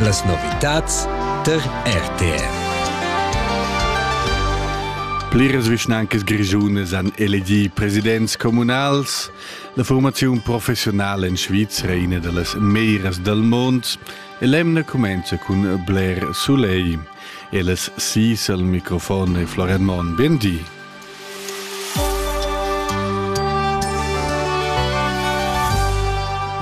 Las novitads tar RTR. Pliras vischnancas grischunas han elegì presidents communals. La formaziun professionala en Svizra è una da las meglieras del mond e l'emna comincia cun bler soleil. Elas sis al microfon e Florian Mon, bien di.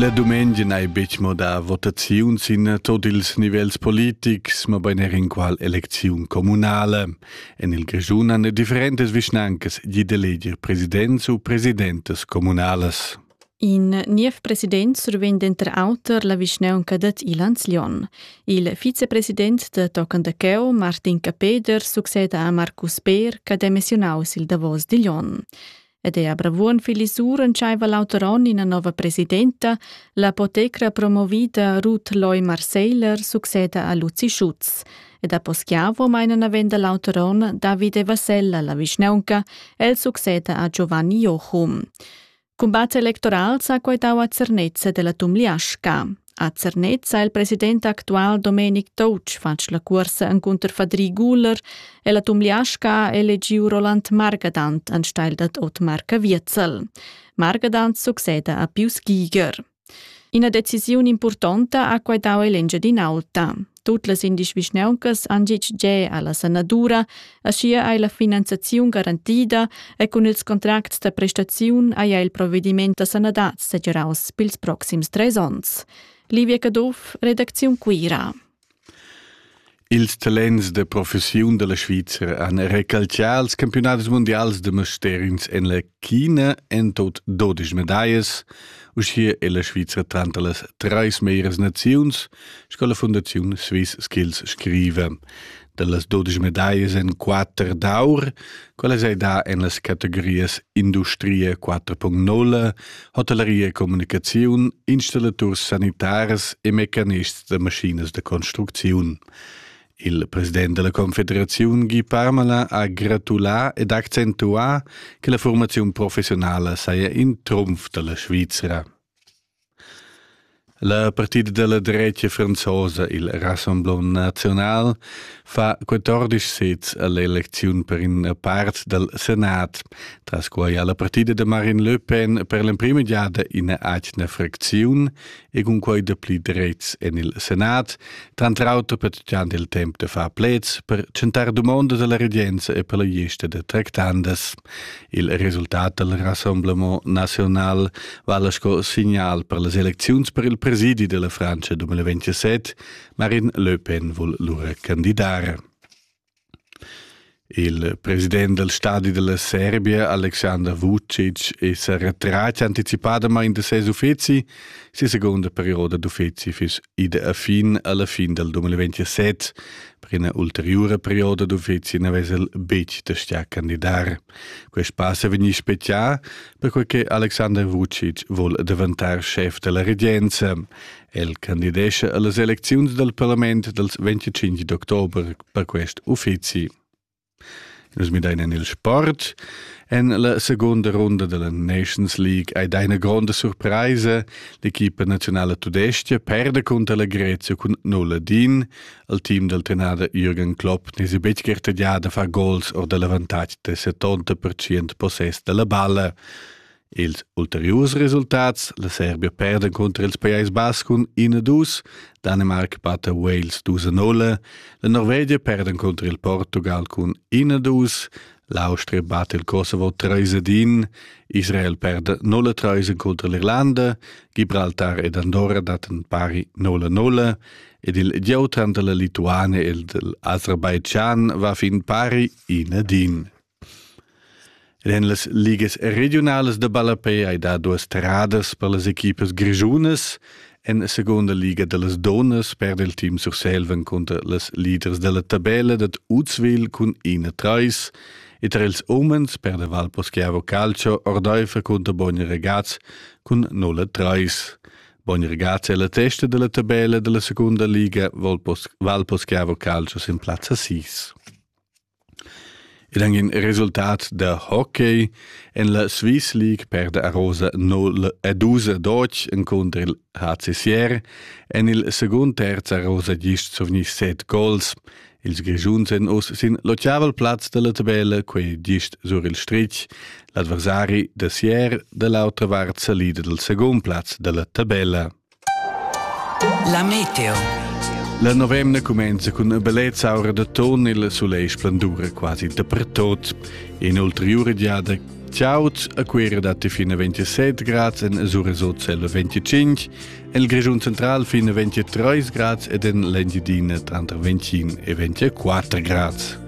La dumengia n'hai betg mo da votaziun sin tot ils nivels politics, mabain er in qual elecziun communale. En il Grischun han differentas vischnancas gì d'eleger presidents u presidentas communales. In niev president survegn denter auter la vischnaunca dad Ilanz-Lyon. Il vicepresident da tochen da cheu, Martin Capeder, succeda a Marcus Peer ch'ha demissiunaus il davos di Lyon. Ed è a Bravuon Filisur entscheiva l'auter onn ina nova presidenta, l'apotecra promovida Ruth Loy Marseiler succeda a Luzi Schutz. Ed a Poschiavo meina navenda l'auter onn Davide Vasella la vischnaunca, el succeda a Giovanni Jochum. Cumbat electoral s'ha quaitau a Zernez della Tumliasca. A Zernez ha il president actual Domenic Touch fatg la cuorsa encunter Fadri Guler e la Tumliasca ha elegiu Roland Margadant anstelle dad Otmar Caviezel. Margadant succeda a Pius Giger. Ina decisiun impurtonta ha quai dau ell'Engiadin'Alta. Tut las indisch vischnauncas han gitg ge alla sanadura, aschia ei la finanziaziun garantida e cun ils contracts da prestaziun haja il provvediment da sanadad segiraus pils proxims treis onns. Livia Caduff, redacziun Cuira. Ils talents da professiun dalla Svizra han recalcià els campiunadis mundials da mastergns en la China en tut dodisch medallas. Uschia è la Svizra tranter las trais meglras naziuns sco la Fundaziun Swiss Skills scriva. Dallas dodisch medallas en quatter d'aur, quella sei da en las categorias industria 4.0, Hotelleria e communicaziun, installaturs sanitaris e mecanists da maschinas da construcziun. Il president della Confederazione Guy Parmala ha gratulà ed accentuà che la formazione professionale saja in trumf dalla Svizzera. La partida della drecia franzosa, il Rassemblement National, fa 14 sets all'elezione per una parte del Senat, tras quai ha la partida de Marine Le Pen per l'emprima giada in agna fraczione e con quai de pli drets en il Senat, tanter auter pertgiand il tempo de far plets per centar domanda della regenza e per la gesta de tractandas. Il resultat dal Rassemblement naziunal vala sco signal per las elecziuns per il presidi della Francia 2027. Marine Le Pen vul lura candidare. Il president del stadi della Serbia, Alexander Vucic, es retrat anticipadamain de ses uffizi. Si segunda perioda d'uffizi fis ide a fin alla fin del 2027. Per ina ulteriura perioda d'uffizi na vesel betg da stia candidar. Quest pass è vegnì spezià, perquai che Alexander Vucic vul daventar schef della regenza. El candidescha a las elecziuns dal parlament dals 25 d'october per quest uffizi. Nus midein en il sport. En la segunda runda della Nations League ei dai ina gronda surpresa. L'equipa nazionala tudestga perde contro la Grezia cun 0 din. Il team del tenada Jürgen Klopp ne si betg gartegià da far gols or dall'avantatg de 70% possess della balla. Ils ulteriurs resultats, la Serbia perda cunter ils Pajais Bas cun 1-2, Danimarca batta Wales 2-0, la Norvegia perda cunter il Portugal cun 1-2, l'Austria batta il Kosovo 3-1, Israel perda 0-3 cunter l'Irlanda, Gibraltar ed Andorra dattan pari 0-0 ed il gieu tranter la Lituania e l'Azerbaijan va fin pari 1-1. Ed en las ligas regiunalas da ballapei hai dà duas terradas per las equipas grischunas. En la segunda liga da las donnas perda il team Surselva cunter las leaders dalla tabella dad Uzwil cun 1-3 e tar ils umens perda Valposchiavo Calcio ordaifer cunter Bogni Ragaz cun 0-3. Bogni Ragaz è la testa della tabella della seconda liga, Valposchiavo Calcio sin plazza 6. Ed anc in resultat da hockey en la Swiss League perda Arosa 0 ed usa Deutsch encunter il HCCR. En il secund terz ha Arosa gist survgni set gols. Ils Grischuns èn uss sin l'otgavel plaz da la tabella, quei gist sur il stritg. L'adversari da Sier da l'autra vart salida dal secund plaz da la tabella. La meteo. La novemna cumenza cun una bellezza aura da ton il soleil splendura quasi dappertut. In ulteriore diada Ciauts a Cuera datti fino a 27 grads, en Suresot cella 25, en Grischun Central fino a 23 grads ed en l'Engiadina tranter 21 e 24 grads.